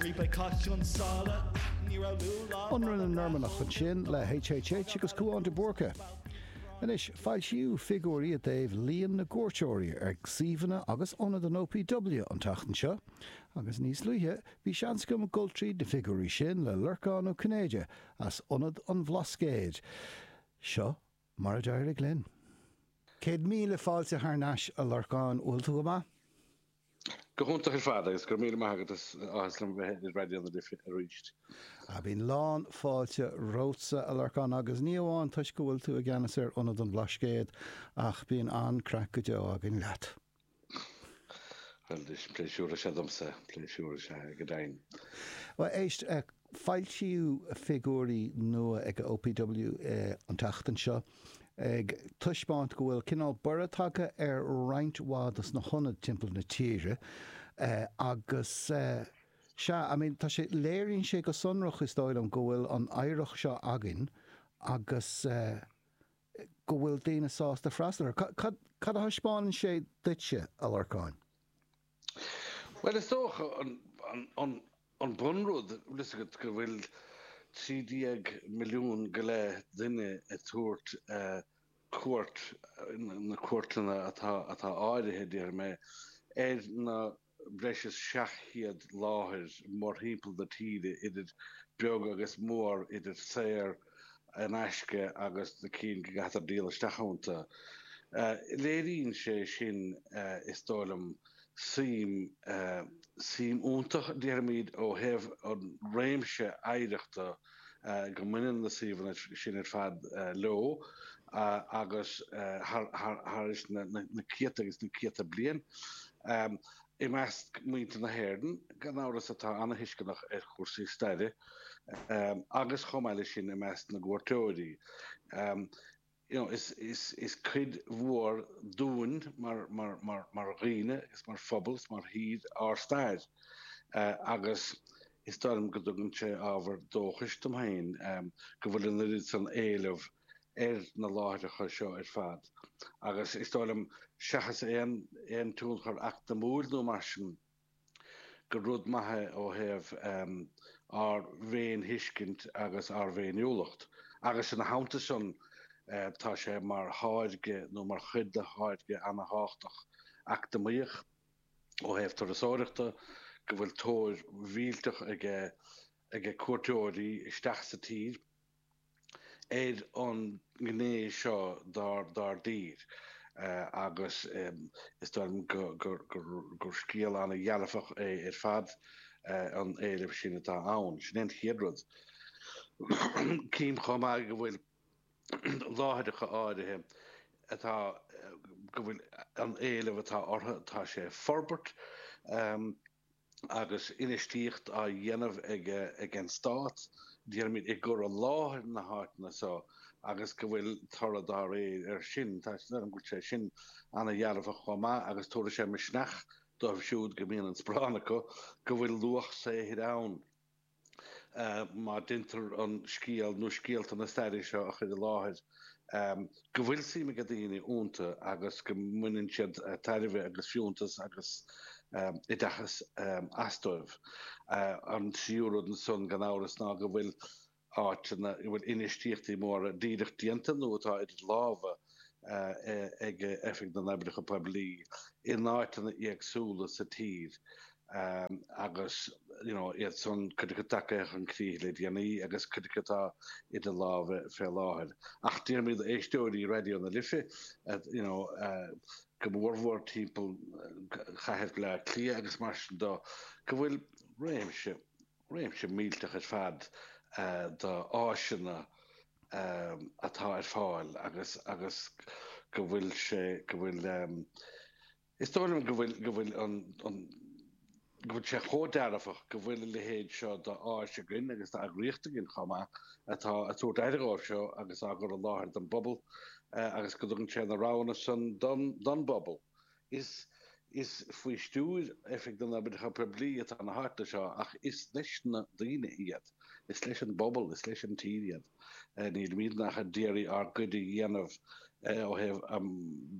Ribe Cath Chionn tSáile, ní raibh liú lá Ionradh na Normannach ansin le HHH agus Cúán de Búrca. Anois, foilsíodh figiúirí i dtaobh líon na gcuairteoirí ar shuíomhanna agus ionaid an OPW an tseachtain seo, agus níos luaithe bhí seans agam ag dul tríd na figiúirí sin le Lorcán Ó Cinnéide as Ionad an Bhlascaoid. Seo Mar a d'éirigh linn. Céad míle fáilte thar n-ais a Lorcáin, bhfuil tú go maith? Go hiontach ar fad agus go raibh míle maith agat is áthas liom bheith ar Raidió na Life arís. Bíonn lán fáilte romhatsa a Lorcáin agus ní amháin toisc go bhfuil tú i gceannas ar Ionad an Bhlascaoid ach bíonn an-chraic go deo againn leat. Bhuel, is pléisiúr is ea domsa, pléisiúr is ea go deimhin. Bhuel, éist, foilsíodh figiúirí nua ag an OPW an tseachtain seo ag taispeáint go bhfuil cineál borradh tagtha ar roinnt mhaith dos na hionaid timpeall na tíre agus sea, I mean, tá sé, léiríonn sé go sonrach is dóigh liom go bhfuil an oidhreacht seo againn agus. go bhfuil daoine sásta freastal air. Cad a thaispeánann sé duitse, a Lorcáin? Bhuel, is dócha an bunrud, bhfuil 'fhios agat go bhfuil trí déag milliún go leith duine ag tabhairt cuairt, na cuairteanna atá áirithe, déarfaidh mé, ar na breis is 700 láthair mórthimpeall na tíre idir beag agus mór, idir saor in aisce agus na cinn go gcaitear díol isteach ionta. Léiríonn sé sin is dóigh liom suim, suim iontach déarfaimid ó thaobh an réimse oidhreachta, go mbaineann na suíomhanna sin ar fad leo agus thar éis na céadta agus na céadta bliain. I measc muintir na hÉireann, gan amhras, atá an-tuisceanach ar chúrsaí staire agus chomh maith leis sin i measc na gcuairteoirí. You know, is cuid mhór dúinn mar dhaoine is mar phobal is mar thír ár stair agus is dóigh liom go dtugann sé ábhar dóchais dom féin go bhfuil an oiread san éilimh ar na láithreacha seo ar fad agus is dóigh liom seachas aon tionchar eacnamúil nó mar sin, gur rud maith é ó thaobh ár bhféinthuiscint agus ár bhféiniúlacht agus ina theannta sin tá sé mar tháirge nó mar chuid de tháirge an-tábhachtach eacnamaíoch ó thaobh turasóireachta, go bhfuil tóir mhillteach aige cuairteoirí isteach sa tír. ar an ngné seo dár dtír agus is dóigh liom gur scéal an-dhearfach é ar fad an éileamh sin atá ann. Sin é an chéad rud. Cím chomh maith go bhfuil láithreacha áirithe atá go bhfuil an éileamh atá orthu tá sé ag forbairt. agus infheistíocht á dhéanamh aige ag an Stát, déarfaimid, i gcur i láthair na háiteanna seo agus go bhfuil toradh dá réir air sin. go bhfuil sé sin an-dearfach chomh maith agus tabharfaidh sé misneach dóibh siúd go mbíonn an sparán acu go bhfuil luach saothair ann. má deintear an scéal nó scéalta na staire seo a chur i láthair, go bhfuil suim ag daoine ionta agus go mbaineann siad tairbhe agus fiúntas agus oideachas astu. An tríú rud ansan, gan amhras, ná go bhfuil áiteanna ina bhfuil infheistíochtaí móra díreach déanta nó atá idir lámha ag Oifig na nOibreacha Poiblí in áiteanna éagsúla sa tír agus iad san cuid acu tagtha chun críche le déanaí agus cuid acu atá idir lámha fé láthair. Ach déarfaimid éisteoirí Raidió na Life, go mór mhór timpeall chathair Bhleá Cliath agus mar sin dó, go bhfuil réimse. réimse millteach ar fad d'áiseanna atá ar fáil agus go bhfuil sé, go bhfuil, is dóigh liom go bhfuil, go bhfuil an, an, go bhfuil sé chomh dearfach go bhfuil a leithéid seo d'áis againn agus d'eagraíocht againn chomh maith atá ag tabhairt aire dhóibh seo agus á gcur i láthair don bpobal agus go dtugann sé na roghanna san don, don bpobal. Is is faoi stiúir Oifig na nOibreacha Poiblí atá na háiteanna seo ach is leis na daoine iad. Is leis an bpobal, is leis an tír iad. Nílimid ach ag iarraidh ár gcuid a dhéanamh ó thaobh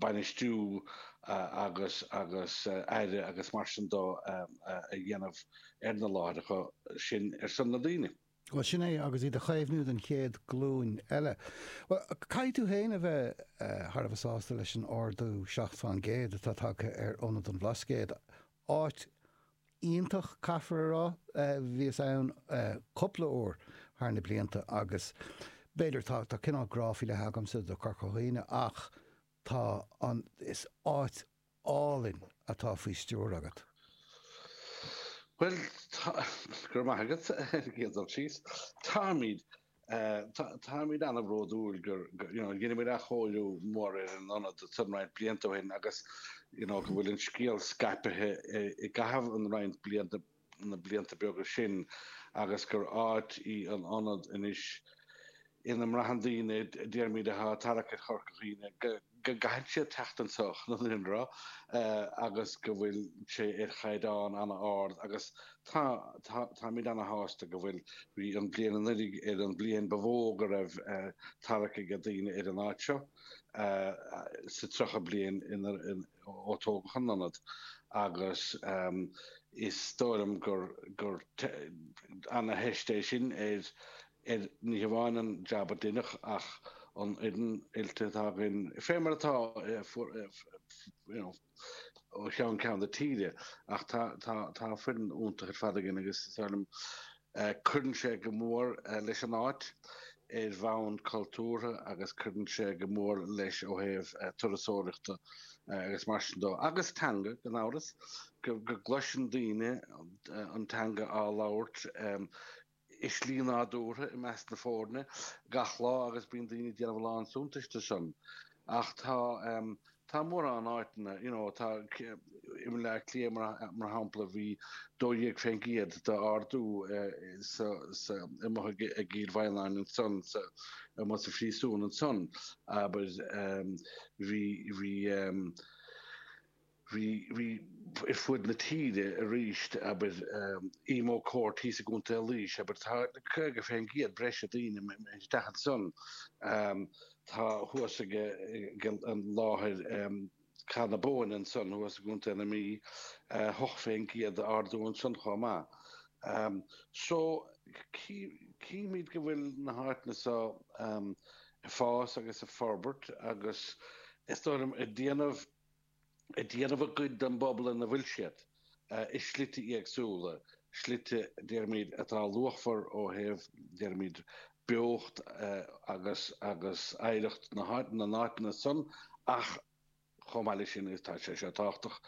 bainistiú agus agus aire agus mar sin dó a dhéanamh ar na láithreacha sin ar son na daoine. Bhuel, sin é, agus iad a chaomhnú don chéad glúin eile. Bhuel, caithfidh tú féin a bheith thar a bheith sásta leis an ardú seacht fán gcéad atá tagtha ar Ionad an Bhlascaoid. Áit iontach, caithfear a rá. Bhíos ann cúpla uair thar na blianta agus b'fhéidir, tá cineál grá faoi leith agamsa do Chorca Dhuibhne ach tá an, is áit álainn atá faoi stiúir agat. Bhuel, tá, go raibh maith agat ar an gcéad dul síos. Táimid, táimid an-bhródúil gur, you know, dheineamar athchóiriú mór ar an ionad san roinnt blianta ó shin agus, you know, go bhfuil an scéal scaipithe i gcaitheamh an roinnt blianta na blianta beaga sin agus gur áit í an Ionad anois ina mbraitheann daoine, déarfaimid atá tarrac ar Chorca Dhuibhne, go gcaitheann siad teacht anso gan amhras agus go bhfuil sé ar chaighdeán an-ard agus táimid ana-shásta go bhfuil. Bhí an bhliain anuiridh ar an bhliain ba mhó go raibh tarrac aige daoine ar an áit seo sa tríocha bliain ó tógadh an ionad agus is dóigh liom gur ana-theist é sin ar ní hamháin an jab a deineadh ach an fhoireann oilte atá againn fé mar atá ó cheann ceann na tíre ach tá foireann iontach ar fad againn agus is dóigh liom Cuireann sé go mór leis an áit ar bhonn cultúrtha agus cuireann sé go mór leis ó thaobh turasóireachta agus mar sin dó. Agus teanga, gan amhras. Go gcloiseann daoine an teanga á labhairt i slí nádúrtha i measc na foirne gach lá agus bíonn daoine ag déanamh a lán suntais de sin. Ach tá. Tá mórán áiteanna, you know, tá i mBaile Átha Cliath mar shampla bhí 12% d'ardú amuigh i gCill Mhaighneann ansan Músaem an Phríosúin ansan abair bhí bhí bhí bhí ar fuaid na tíre arís abair Emo Court thíos i gContae Laois abair tá 50% breise daoine isteach ansan. Tá thuas aige láthair Cath na Bóinne ansan thuas i gContae na Mí. 8% d'ardú ansan chomh maith. So, chímíd go bhfuil na háiteanna so ag fás agus ag forbairt agus is dóigh liom ag déanamh ag déanamh a gcuid don bpobal ina bhfuil siad, i slite éagsúla, slite, déarfaimid, atá luachmhar ó thaobh, déarfaimid, beocht agus agus oidhreacht na háite, na n-áiteanna san ach chomh maith leis sin, tá sé seo tábhachtach,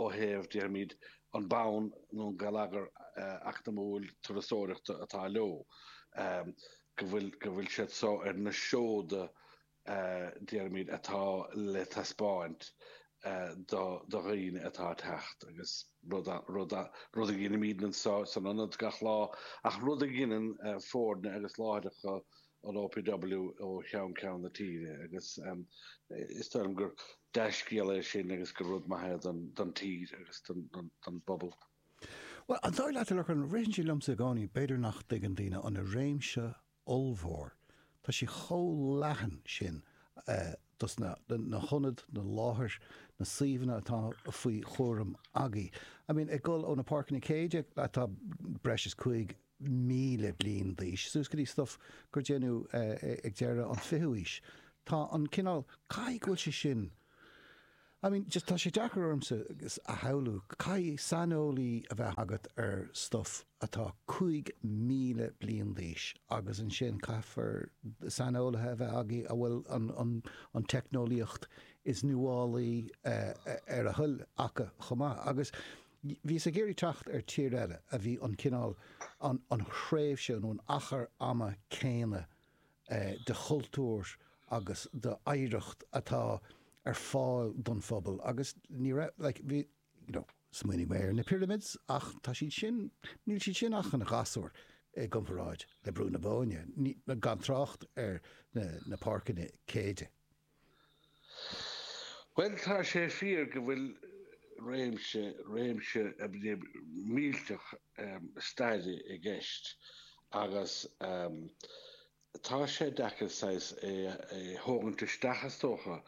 ó thaobh, déarfaimid, an bonn nó an geilleagar eacnamúil turasóireachta atá leo, go bhfuil, go bhfuil siad so ar na seoda déarfaimid, atá le taispeáint do dhaoine atá ag teacht agus rud a dheinimid anso san ionad gach lá ach rud a dheineann foirne agus láithreacha an OPW ó cheann ceann na tíre agus is dóigh liom gur dea-scéal é sin agus gur rud maith é don tír agus don bpobal. Bhuel, an dóigh leat a Lorcáin, ritheann sé liomsa i gcónaí b'fhéidir nach dtuigeann daoine an réimse ollmhór. Tá sé chomh leathan sin idir na na hionaid, na láthair, na suíomhanna atá faoi chúram agaidh. I mean ag dul ó na Páirceanna Céide atá breis is 5,000 bliain d'aois suas go dtí stuff a déanadh ag deireadh an 20ú aois. Tá an cineál, caithfidh go bhfuil sé sin, I mean, just tá sé deacair ormsa a shamhlú, caithfidh saineolaí a bheith agat ar stuff atá 5,000 bliain d'aois agus ansin caithfear saineolaithe a bheith agaibh a bhfuil an teicneolaíocht is nuálaí ar a dtoil acu chomh maith. Agus bhí mé ag iarraidh teacht ar tír eile a bhí an cineál, an thréimhse nó an achar ama céanna de chultúr agus d'oidhreacht atá ar fáil don phobal agus ní raibh, like, bhí, you know, smaoinigh mé ar na pyramids ach tá siad sin, níl siad sin ach ina ngasúir i gcomparáid le Brú na Bóinne, gan trácht ar na Páirceanna Céide. Bhuel, tá sé fíor go bhfuil réimse, réimse millteach staire i gceist agus tá sé deacair saghas é a thógaint isteach is dócha,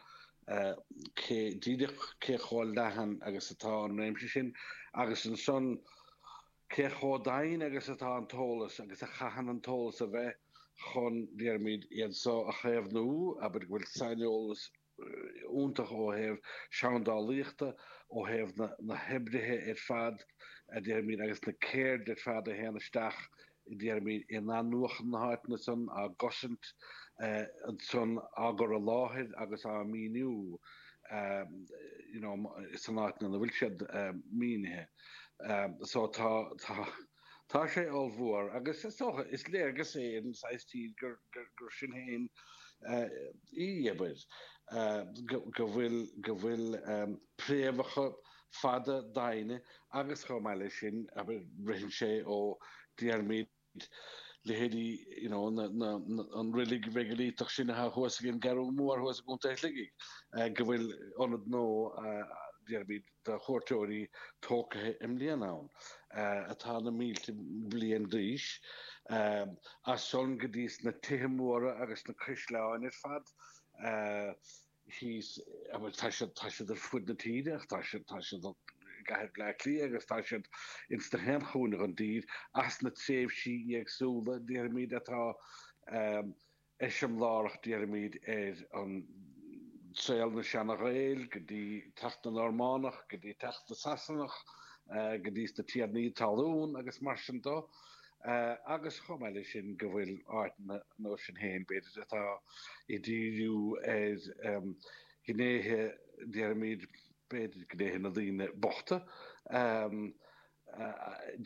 cé, díreach cé chomh leathan agus atá an réimse sin agus ansan, Cé chomh doimhin agus atá an t-eolas, agus a chaitheann an t-eolas a bheith, chun, déarfaimid, iad so a chaomhnú, abair go bhfuil saineolas iontach ó thaobh seandálaíochta, ó thaobh na hoibrithe ar fad, déarfaimid, agus na ceirdeanna ar fad a théann isteach, déarfaimid, in athnuachan na háiteanna san, á gcosaint ansan, á gcur i láthair agus á míniú, you know, san áit ina bhfuil siad mínithe. so tá tá tá sé ollmhór agus is dócha is léargas é an saghas tír gur gur sin féin í abair go bhfuil go bhfuil préamhacha fada doimhne agus chomh maith leis sin abair ritheann sé ó déarfaimid leithéid an reilig mheigilítach sin atá thuas ag an gCeathrú Mhór thuas i gContae Shligigh, go bhfuil ionad nua, déarfaimid, do chuairteoirí tógtha i mbliana ann, atá na mílte bliain d'aois. As san go dtí sna tithe móra agus sna caisleáin ar fad. is, a bhfuil, tá siad, tá siad ar fud na tíre ach tá siad, tá siad i gcathair Bhleá Cliath agus tá siad ins nach aon chúinne den dtír as na tréimhsí éagsúla, déarfaimid, atá eiseamlárach, déarfaimid, ar an saol na Seana-Ghaeil go dtí teacht na Normánach, go dtí teacht na Sasanach, go dtí sna Tiarnaí talún agus mar sin de. agus chomh maith leis sin go bhfuil áiteanna nó suíomhanna, b'fhéidir, atá ag díriú ar ghnéithe, deirimid, b'fhéidir, gnéithe na ndaoine bochta,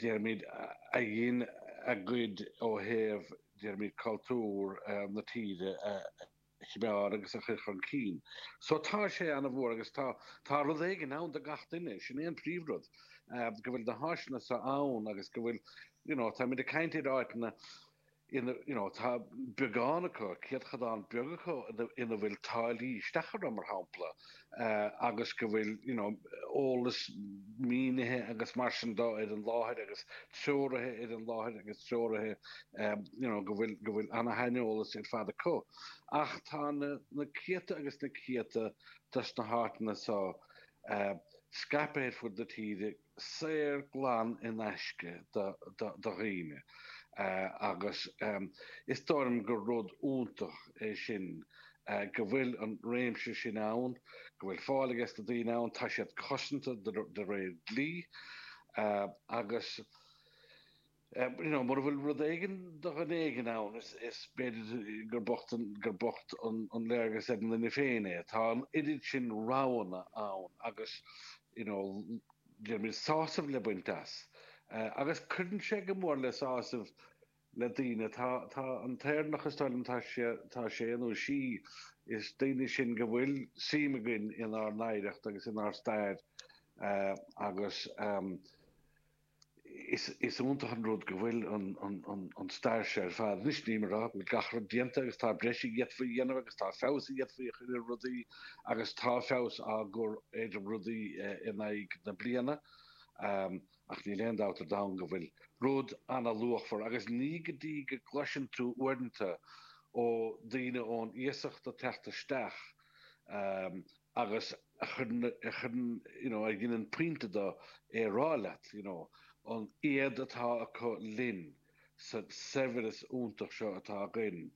deirimid, a dhein an-chuid ó thaobh, deirimid, cultúr na tíre a. chimeád agus a chur chun cinn. So tá sé ana-mhór agus tá tá rud éigin ann do gach duine, sin é an príomhrud, go bhfuil na háiseanna so ann agus go bhfuil you know, tá muid ag caint ar áiteanna ina you know, tá beagán acu, céatadán beag acu ina bhfuil táillí isteach orthu mar shampla. agus go bhfuil you know eolas mínithe agus mar sin do ar an láthair agus treoraithe ar an láthair agus treoraithe you know go bhfuil go bhfuil ana-shaineolas ar fad acu. Ach tá na na céadta agus na céadta dos na háiteanna so scaipthe ar fud na tíre. saor glan in aisce do dhaoine agus is dóigh liom gur rud iontach é sin go bhfuil an réimse sin ann, go bhfuil fáil ages na daoine ann, tá siad cosanta de réir dlí agus. You know, mura bhfuil rud éigin do dhuine éigin ann is b'fhéidir gur bocht an, gur bocht an, an léargas ar an nduine féin é. Tá an oiread sin roghanna ann agus, you know, deirimid, sásamh le baint as. Agus cuireann sé go mór le sásamh le daoine. Tá, tá an t-Éireannach, is dóigh liom, tá sé, tá sé nó sí, is daoine sinn go bhfuil suim againn inár n-oidhreacht agus inár stair agus, Is iontach an rud go bhfuil an stair seo ar fad anois, nílim ag rá go bhfuil gach rud déanta agus tá breis a d'fhéadfaí a dhéanamh agus tá feabhas a d'fhéadfaí a chur ar rudaí agus tá feabhas á chur ar rudaí in aghaidh na bliana ach níl aon dabht ar domhan go bhfuil rud ana-luachmhar agus ní go dtí go gcloiseann tú uaireanta ó daoine ón iasacht ag teacht isteach agus a chuireann, a chuireann, you know, a dheineann pointe de é a rá leat, you know, an éad atá acu linn sa saibhreas iontach seo atá againn.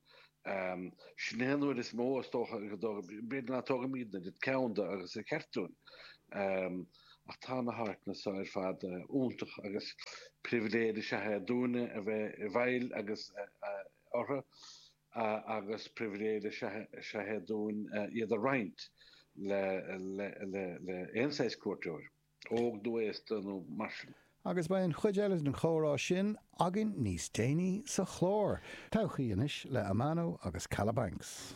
Ehm, sin é an uair is mó, is dócha, go dtóg, b'fhéidir nach dtógaimid a dóthain ceann de agus ba cheart dúinn. Ehm, ach tá na háiteanna seo ar fad iontach agus pribhléid is ea é dúinne a bheith i bhfeighil agus, eh, eh, orthu. agus pribhléid is ea é dúinn iad a roinnt le aon saghas cuairteoir, óg nó aosta nó mar sin. Agus beidh an chuid eile den chomhrá sin againn níos déanaí sa chlár. Todhchaí anois le Amano agus Calabanks.